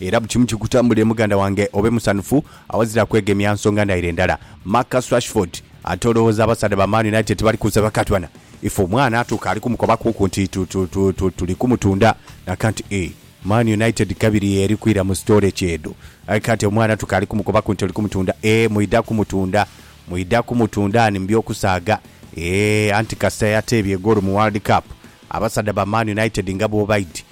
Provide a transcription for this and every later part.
Era buli kimu kikutambulire muganda wange obe musanhufu awazira kwegemya nsonga ndhaire ndhala. Marcus Rashford, Ate olowooza abasaadha ba Man United tebali kunsabe akatwana? Ife omwana atuuka ali kumukobakuku nti tuli kumutunda nakanti eeh Man United kabiri y'eri kwira mu storage edho aye kati omwana atuuka ali kumukobaku nti oli kumutunda eeh mwidha kumutunda mwidha kumutunda ani mu by'okusaaga eeh anti kasita yateebye egoolo mu World Cup abasaadha ba Man United nga bwobaidhi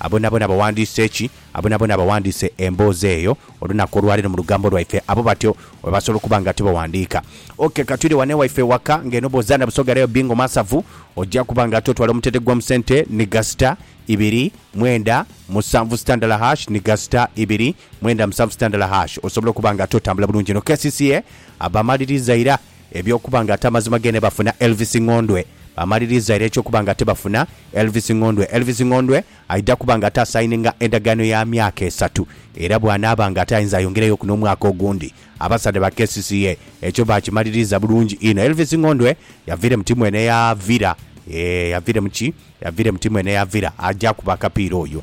Aboonaboona abaghandiise ki? Aboonaboona abaghandiise emboozi eyo olunaku olwa leero mu lugambo lwaife, abo batyo bwe basobola okuba nga tibaghandiika. Ok, ka twidhe ghano ewaife ewaka. Ng'eno bw'oza na Busoga Rail Bingo Masavu, oja kuba nga totwala omutendhe gw'omu sente ni gasita ibiri mwenda musanvu sitandala hash ni gasita ibiri mwenda musanvu sitandala hash, osobola okuba nga totambula bulungi inho. Kcca abamaliriza ira. Eby'okuba nga ate amazima gene bafuna Elvis Ngondwe. Baamaliriza era eky'okuba nga ate bafuna Elvis Ngondwe. Elvis Ngondwe aidha kuba nga ate asayininga endagaano ya myaka esatu era bw'anaaba nga ate ayinza ayongerayoku n'omwaka ogundi. Abasaadha ba kcca ekyo baakimaliriza bulungi inho. Elvis Ngondwe yaviira emuti mwene yaavira. Yee, yaviira mu ki? Yaviira emuti mwene yaavira. Aja kuba akapiira oyo.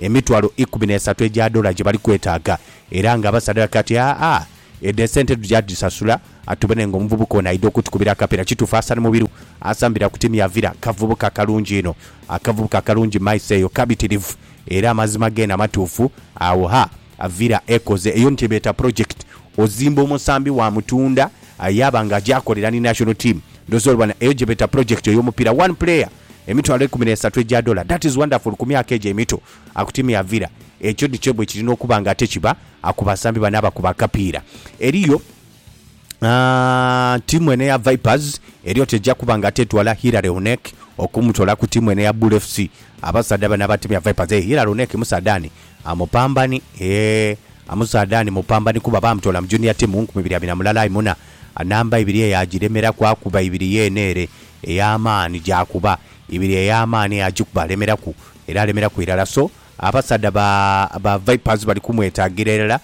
emitwalo ikumi n'esatu egya dola gye bali kwetaaga era nga basadaka ati, Aa, edho esente tugya dhisasula. Atubone nga omuvubuka ono aidha okutukubira akapiira. Kituufu Hassan Mubiru asambira ku tiimu ya Villa. Kavubuka kalungi inho. Akavubuka kalungi maiso eyo kabitirivu era amazima geene amatuufu agho. Ha, Villa ekoze eyo ni kye beeta pulojekiti. Ozimba omusambi waamutunda yaaba nga aja akolera ni national team. Ndhooza oli bona eyo gye beeta pulojekiti ey'omupiira. One player! Emitwalo eikumi n'esatu egya dola. That is wonderful ku myaka egyo emito. Akutimya avira. Ekyo nikyo bwe kirina okuba nga ate kiba ku basambi bano abakuba akapiira. Eriyo, aah, ttiimu eno eya Vipers eriyo tejja kuba nga ate etwala Hillary Onek okumutoola ku ttiimu eno eya Bull FC. Abasaadha bano abatimya Vipers, eeh, Hillary Onek musaadha ani? Mupambani, eeh, musaadha ani mupambani kuba baamutoola mu Junior Team mu nkumi ibiri abiri na mulala aye muna namba ibiri eyo agiremeraku akuba ibiri yeene ere. Ey'amaani gy'akuba ibiri, ey'amaani eyo agikuba alemeraku, era alemeraku irala. So, abasaadha ba, ba Vipers bali kumwetaagira irala,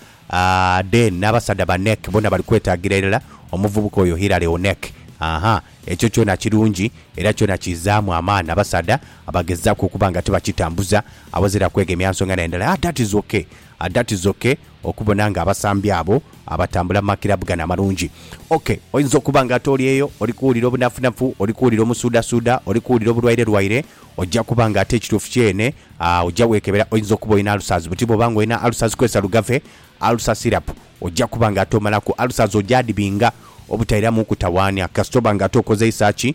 then n'abasaadha ba Neck boona bali kwetaagira irala omuvubuka oyo Hilary Onek. Aha, ekyo kyona kirungi, era kyona kizaamu amaani abasaadha abagezaaku okuba nga tibakitambuza, awazira kwegemya nsonga nayo ndala. Ah, that is ok. Ah, that is ok. Okubona nga abasambi abo abatambula mu makirabu gano amalungi. Ok, oyinza okuba nga ate oli eyo, oli kuwulira obunafunafu, oli kuwulira omusuudasuuda, oli kuwulira obulwairelwaire, oja kuba nga ate ekituufu kyeene, aah, oja weekebera, oyinza okuba olina ulcers, buti bw'oba nga olina ulcers kozesa Lugave Ulcer Syrup, oja kuba nga ate omalaku ulcers, oja dhibinga obutairamuuku tawaania, kasita oba nga ate okozeisa ki?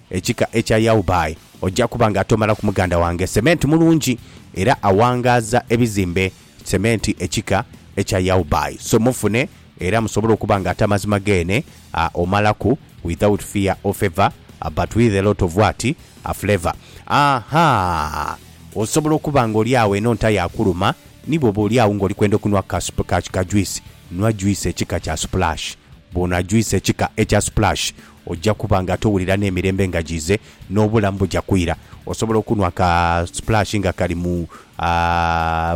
Ekika ekya Yaubai oja kuba nga tomalaku muganda wange sementi mulungi era awangaaza ebizimbe sementi ekika ekya Yaubai so mufune era musobole okuba nga ate amazima geene a omalaku without fear or favour a but with a lot of what a flavour ahaa osobola okuba nga oli awo eno nta yakuluma ni bwoba oli awo nga oli kwenda okunwa ka sup ka kika juice nwa juice ekika kya splash bwonwa juice ekika ekya splash Oja kuba nga towulira n'emirembe nga jiize, n'obulamu buja kwira. Osobola okunhwa ka splash nga kali mu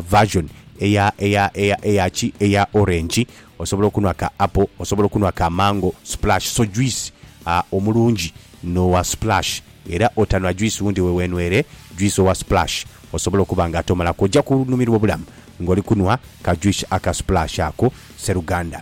version eya eya eya eya ki eya orange, osobola okunhwa ka apple, osobola okunhwa ka mango splash. So juice omulungi n'owa splash. Era otanhwa juice wundi we weenhwere juice owa splash osobola okuba nga tomalaku. Oja kunhumirwa obulamu ng'oli kunhwa ka juice aka splash ako sseruganda.